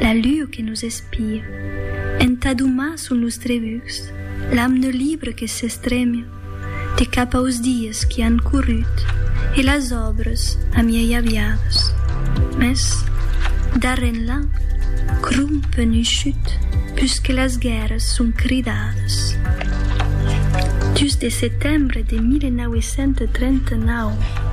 La lur que nos espia. Entà domar sul nustre vucs l'amne libre que s'estremia de cap aus dies qui an corrut e las òbres amiei aviadas. Mès, darrè enlà, crum penushut pus que las guèrras son cridadas. Dus de setembre de 1939.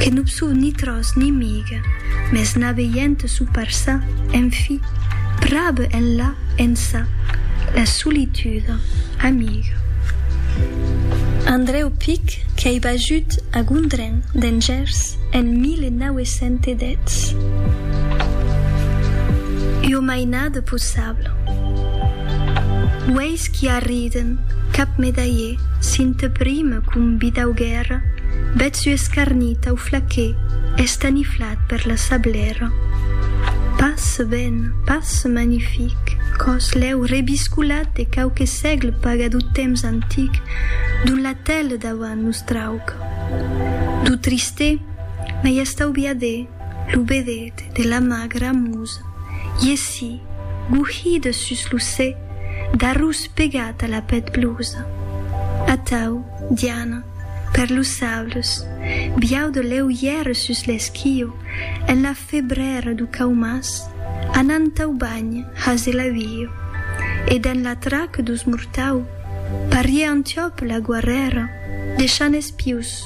Que non sou ni tròç ni miga, mès n'aveient sou parça, en fi, pr'ab enlà, ençà, la solituda, amiga. Andrèu Pic qu'ei bajut a Gondren, dens Gèrs, en 1910. Ua mainada possibla. Uei! Aqueis qui arriden, cap medalhè, s'in te prime com bidau guèrra, bèth su escarnit tau flaquè, estaniflat per la sablèra. Pas ben, pas magnific, còs lèu rebiscolat de quauque sègle paga dou temps antic, dont la tèle dauant nos trauc. Dou tristè, mai estaubiadè, lo bedet de la magra musa. Art. Iesi, gouhida sus lo sè, d'arròs pegat a la pèth blusa. Atau, Diana, per los saules, biau de lèu ièr sus l'esquio, en la febrèra du Caumàs, anant au banh has e l'auio. E dens la trac dus mortau, pariè Antiòp la guarrèra, deishant es pius.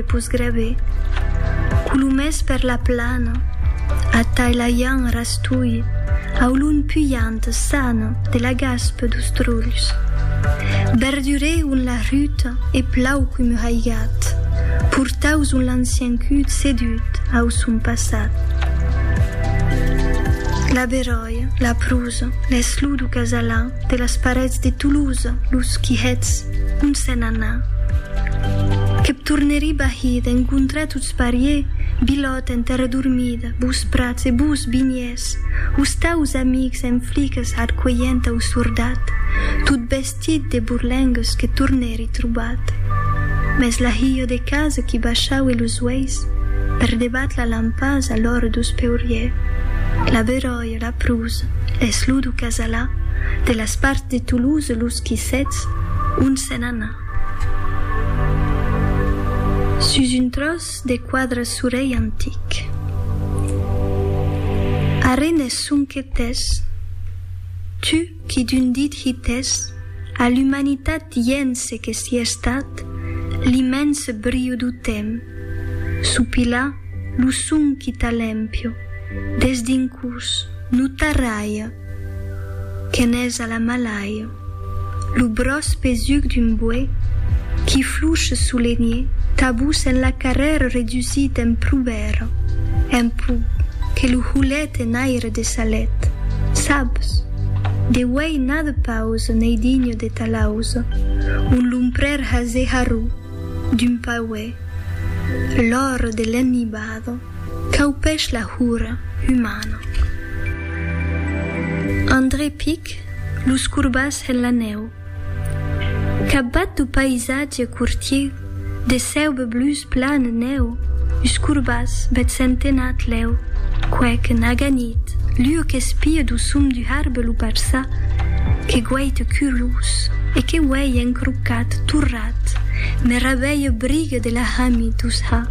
E pus grave, colomès per la plana, atai la ian rastolhe au lon pujant san de la gaspe dos trolhs. Berdurè on la ruta e plau com un haigat, portaus on l'ancien cud sedut au son passat. La beròia, la prosa, l'eslou do casalan, De las parets de Toulouse los quihets ont s'en anà. Que p' tornerí bahí d'encontrar tots parié Bilòt en terre dormida, bos prats e bos vinhers, os taus amics en fliques arcuelhent au sordat, tot vestit de borlengues que tornèri trobat. Mès la hilha de casa qui baishaue los uèis per debat la lampasa l'òre dos peuriers, la beròia, de la Pruz, es lo du Casalà, de las parts de Toulouse los Quissets, ont se n'ana. Sus un tròç de quadre surei antic. Arren es sonque tès, tu qui d'un dit hitès a l'umanitat dient ce que s'i estat, l'immens briu du temps, sopilar lo son qui t'a l'empio, Des dincús no tarralha que n'es a la malaia lo bròç pesuc d'un boè qui fluche solenhe tabús en la carrèra redusit en prubèra en pó que lo holet en aire de sa let sabs de uèi n'a de pausa n'ei digne de ta lausa un lomprèr hase harró d'un pauè l'ora de l'enmibada. Caupèch la hura umana. André pic los corbats en la nèu. Capbat du païsatge cortier de cèube blus plan nèu us corbats bèth centenat lèu quèc naga nit lhue qu'espie du sum du harbe lo parçà que guaite curlous e que uèi encrocat torrat me rabeie brigue de la hami dus ha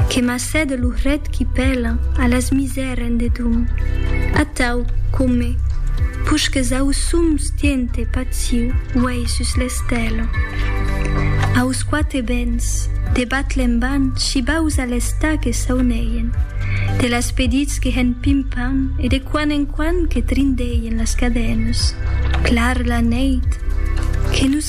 Que m'assède lo hret qui pèla a las misères en dedum. Atau, come, pusques ausum stiente paciu uèi sus l'estèla. Aus quate bens, de batle en ban scibaus a l'està que sauneien, de las pedits que hèn pimpan e de quan en quan que trindeien las cadènes. Clar la nèit, que nos